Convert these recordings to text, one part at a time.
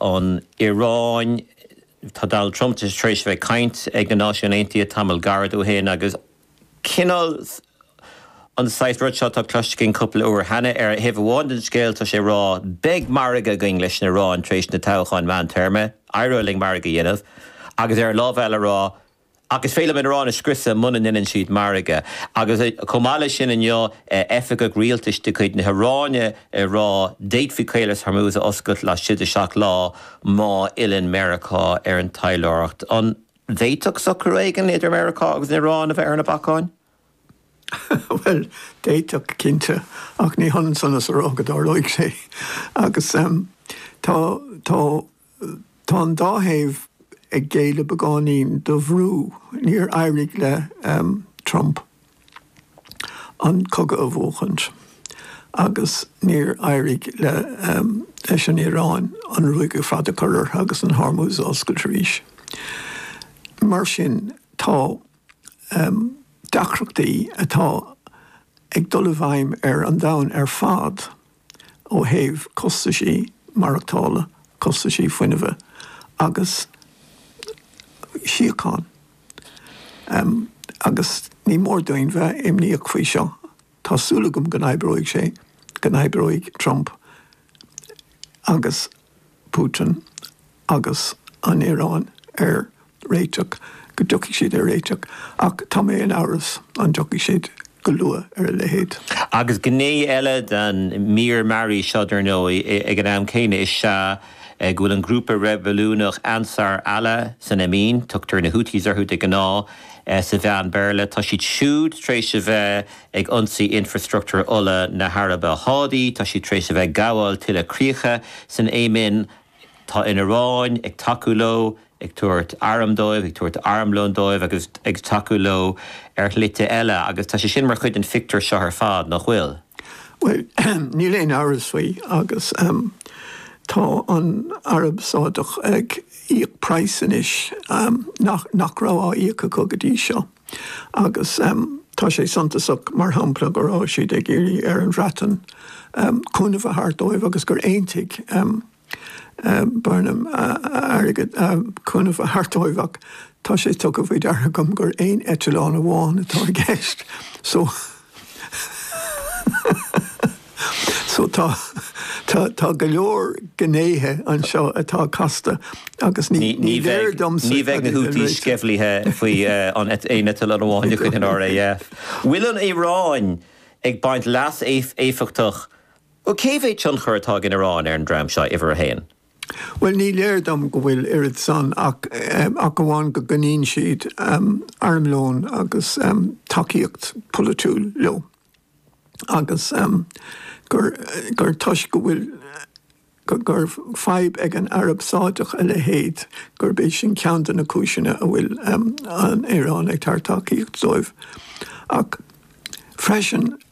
an Iaráin. Tá Donald Trump tar éis a bheith ag caint ag na Náisiúin Aontaithe tamall gairid ó shin agus cineál an saghas rud seo atá cloiste againn cúpla uair cheana. Ar thaobh amháin den scéal tá sé ag rá 'beidh margadh againn leis an Iaráin tar éis na toghcháin mheántéarma, éireoidh linn margadh a dhéanamh', agus ar an lámh eile ag rá Ach is féidir liom an Iaráin a scriosadh muna ndeineann siad margadh. Agus chomh maith leis sin inniu, oifigeach rialtais de chuid na hIaráine ag rá, D'fhéadfaí Caolas Hormuz a oscailt laistigh de seacht lá má fhilleann Meiriceá ar an taidhleoireacht. An bhféadfadh socrú éigin idir Meiriceá agus an Iaráin a bheith ar na bacáin? Bhuel, d'fhéadfadh, cinnte, ach ní hionann san is a rá go dtarlóidh sé. Agus tá, tá. Tá an dá thaobh ag géilleadh beagáinín do bhrú. Níor éirigh le Trump an cogadh a bhuachaint agus níor éirigh leis an Iaráin an ruaig ar fad a chur orthu agus an Hormuz a oscailt arís. Mar sin tá deacrachtaí atá ag dul i bhfeidhm ar an domhan ar fad. ó thaobh costaisí maireachtála, costaisí fuinnimhe agus síocháin agus ní mór dúinn bheith imníoch faoi seo. Tá súil agam go n-oibreoidh sé, go n-oibreoidh Trump agus Putin, agus an Iaráin ar réiteach, go dtiocfaidh siad ar réiteach, ach tá mé in amhras an dtiocfaidh siad go luath ar a leithéid. Agus gné eile den mír mearaí seo, dar ndóigh, ag an am céanna, is ea go bhfuil an grúpa reibiliúnach Ansar Allah san Éimin, tugtar na Houthis orthu de ghnáth sna meáin Bhéarla, tá siad siúd tar éis a bheith ag ionsaí infreastruchtúr ola na hAraibe Sádaí, tá siad tar éis a bheith ag gabháil tuilleadh críocha san Éimin, Tá an Iaráin ag tacú leo, ag tabhairt airm dóibh, ag tabhairt armlóin dóibh agus ag tacú leo ar shlite eile agus tá sé sin mar chuid den phictiúr seo ar fad, nach bhfuil? Bhuel, níl aon amhras faoi agus tá an Araib Shádach ag íoc praghas anois nach raibh á íoc acu go dtí seo. Agus tá sé suntasach, mar shampla, go raibh siad ag iarraidh ar an Bhreatain cúnamh a thabhairt dóibh agus gur aontaigh Burnham cúnamh a thabhairt dóibh ach tá sé tugtha faoi deara agam gur aon eitleán amháin atá i gceist. So tá, tá, tá go leor gnéithe anseo atá casta agus ní, ní léir domsa cad é an réiteach. Ní bheidh na Houthis sceimhlithe faoin aon eitleán amháin de chuid an RAF. Bhfuil an Iaráin ag baint leas éifeachtach, nó cé mhéad tionchar atá ag an Iaráin ar an dream seo, uimhir a haon? Bhuel, ní léir dom go bhfuil oiread san ach amháin go gcoinníonn siad armlón agus tacaíocht pholaitiúil leo agus gur toisc go bhfuil, gur fadhb ag an Araib Sháideach a leithéid, gurb é sin ceann de na cúiseanna a bhfuil an Iaráin ag tabhairt tacaíochta dóibh. Ach freisin.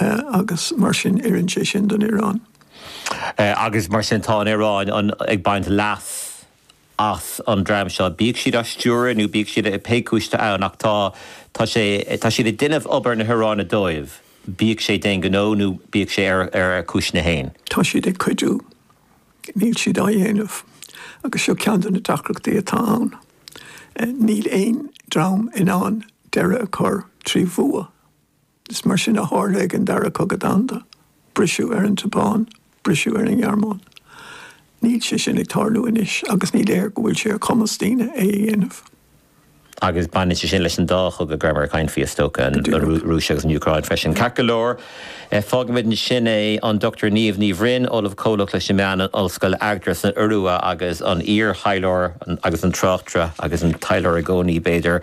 agus mar sin oireann sé sin don Iaráin. agus mar sin tá an Iaráin ag baint leas as an dream seo, bíodh siad á stiúradh nó bíodh siad, pé cúis atá ann, ach tá, tá sé, tá siad ag déanamh obair na hIaráine dóibh, bíodh sé d'aon ghnó nó bíodh sé ar, ar a gcúiseanna féin. Tá siad ag cuidiú, níl siad á dhéanamh, agus seo ceann de na deacrachtaí atá ann. Níl aon dream in ann deireadh a chur trí bhua Is mar sin a tharla ag an Dara Cogadh Domhanda, briseadh ar an tSeapáin, briseadh ar an nGearmáin. Níl sé sin ag tarlú anois agus ní léir go bhfuil sé ar chumas daoine é a dhéanamh. Agus baineann sé sin leis an dá chogadh go raibh muid ag caint faoi, is dócha, an Rúis agus an Úcráin freisin. Ceart go leor, fágfaimid ansin é. An Dr Niamh Ní Bhroin, Ollamh Comhlach leis na Meáin in Ollscoil Agder san Iorua agus an iar-thaidhleoir agus an tráchtaire agus an taidhleoir i gcónaí, b'fhéidir,